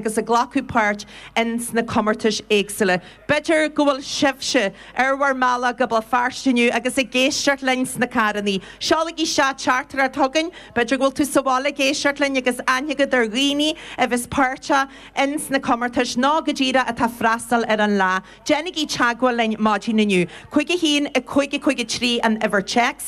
agus ag glacadh páirt ins na comórtais éagsúla. B'fhéidir go bhfuil sibhse ar bhur mbealach go Béal Feirste inniu agus ag éisteacht linn sna carrannaí. Seolaigí teachtaireacht chugainn, b'fhéidir go bhfuil tú sa bhaile ag éisteacht linn agus aithne agat ar dhaoine a bheas páirteach ins na comórtais nó go díreach atá freastal ar an lá. Déanaigí teagmháil linn maidin inniu. 51553 an uimhir téacs.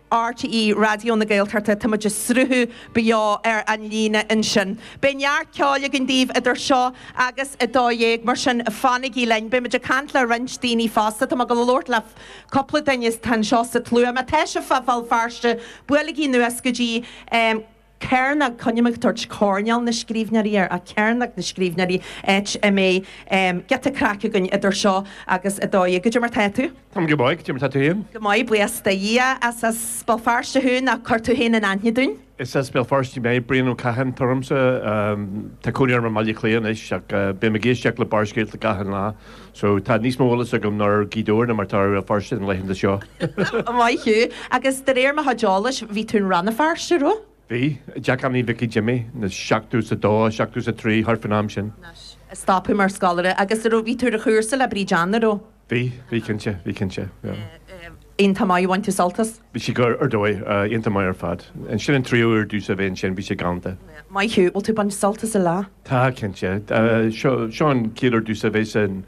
RTÉ Raidió na Gaeltachta, tá muid ag sruthú beo ar an líne ansin. Beidh neart ceoil againn daoibh idir seo agus a dó dhéag, mar sin fanaigí linn. Beidh muid ag caint le roinnt daoine fosta, tá mé ag dul a labhairt le cúpla duine atá anseo sa tslua. Má tá sibh fá Bhéal Feirste, buailigí anuas go dtí. Cearnóg, coinním ag tabhairt coirnéal na scríbhneoirí air, Cearnóg na Scríbhneoirí, áit a mbeidh, em, giota craic againn idir seo agus a dó dhéag. Cad é mar tá tú? Tá mé go maith, cad é mar tá tú féin? Go maith, buíochas le Dia. An as Béal Feirste thú ná cuir tú féin in aithne dúinn? Is as Béal Feirste mé, Brian Ó Catháin atá ormsa. Tá cónaí orm i mBaile Átha Cliath anois ach bím ag éisteacht le Barrscéalta gach aon lá. So, tá níos mó eolas agam ar Ghaoth Dobhair ná mar tá ar Bhéal Feirste na laethanta seo! Maith thú. Agus de réir mo chuid eolais, bhí tú i Rann na Feirste roimhe? Bhí. Teach Annie Mhicí Jimmy, na seachtó is a dó, seachtó is a trí, thart faoin am sin. Anois, stop thú mar scoláire. Agus a raibh, bhí tú ar chúrsa le Bríd Anna roimhe? Bhí, bhí cinnte, bhí cinnte. Iontach maith ar bhain tú sult as. Bhí sé go, ar dóigh. Iontach maith ar fad. Sin an tríú uair domhsa a bheith ansin, bhí sé galánta. Maith thú. Bhfuil tú ag baint sult as an Fhleadh? Tá, cinnte. Seo an chéad uair domhsa a bheith san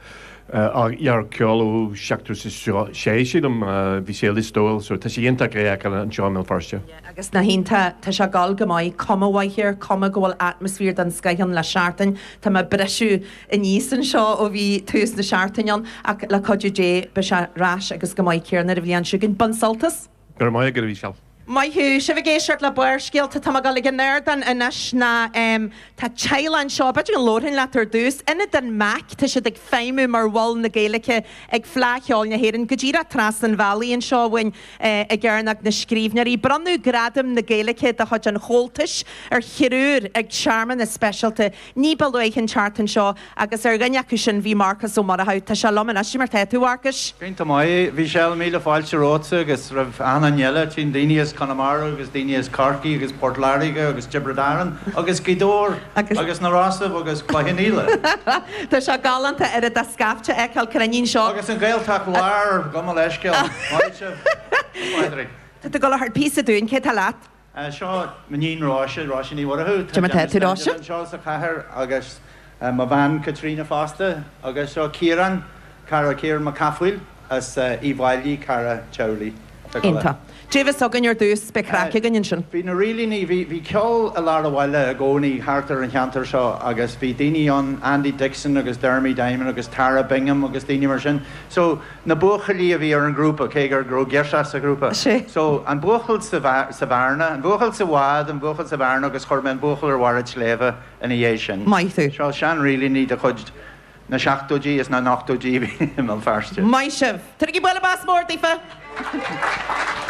Fhleadh Cheoil ó seachtó is a sé, sílim. Bhí sé i Lios Tuathail so tá sé iontach é a fheiceáil anseo i mBéal Feirste. Yeah, agus na haíonna, tá sé ag goil go maith. Cuma mhaith air, cuma go bhfuil atmaisféar den scoth ann le seachtain. Tá mé ag briseadh. aníos anseo ó bhí tús na seachtaine ann ach le cuidiú Dé beidh sé ar ais agus chomh maith céarna ar an bhliain seo chugainn. Bain sult as! Go raibh maith agat, a Mhichelle. Maith thú! Sibh ag éisteacht le Barrscéalta, tá mé ag dul ag an ardán anois ná em tá teaghlaigh anseo, b'fhéidir go labharfainn leat ar dtús, Ionad an MAC, tá siad ag feidhmiú mar mhol na Gaeilge ag Fleadh Cheoil na hÉireann, go díreach trasna an bhealaigh anseo uainn eh, i gCearnóg na Scríbhneoirí. Bronnadh Gradam na Gaeilge de chuid an Chomhaltais ar thriúr ag searmanas speisialta. Ní ba luaithe an tseachtain seo, agus ar dhuine acu sin bhí Marcas Ó Murchú. Tá sé liom anois. Cad é mar tá tú, a Mharcais? Go hiontach maith, a Mhichelle, míle fáilte romhatsa agus roimh achan duine eile, tchím daoine as Conamara agus daoine as Corcaigh agus Port Láirge agus Tiobraid Árann agus Gaoth Dobhair agus na Rosaibh agus Cloich Cheann Fhaola. Tá sé galánta oiread de scaifte a fheiceáil cruinn anseo. Agus an Ghaeltacht Láir, gabh mo leithscéal. Maith sibh, a Phádraig. Tá tú ag dul a thabhairt píosa dúinn. Cé tá leat? Seo m'iníon Róise, Róise Ní Mhuireadhaigh. Tá Gemma Gemma Pheter Stedman Róise anseo sa chathaoir agus mo bhean Caitríona fosta. Agus seo Ciarán, cara, Ciarán Mac Cathmhaoil as Uíbh Fháilí, cara teaghlaigh. Dia is Muire againn ar dtús, beidh craic againn ansin. Bhí na Rílíní, bhí, bhí ceol i lár an bhaile i gcónaí thart ar an cheantar seo agus bhí daoine ann, Andy Dixon agus Dermy Diamond agus Tara Bingham agus daoine mar sin. So, Na buachaillí a bhí ar an ghrúpa, cé go raibh girseach sa ghrúpa. Sea. So, an buachaill sa bhearna, an buachaill sa bhád, an buachaill sa bhearna agus chuir mé an buachaill ar bharr an tsléibhe ina dhiaidh sin. Maith thú. Seo seanrílíní de chuid na seachtóidí is na n-ochtóidí a bhí i mBéal Feirste. Maith sibh. Tabhair bualadh bos mór daofa!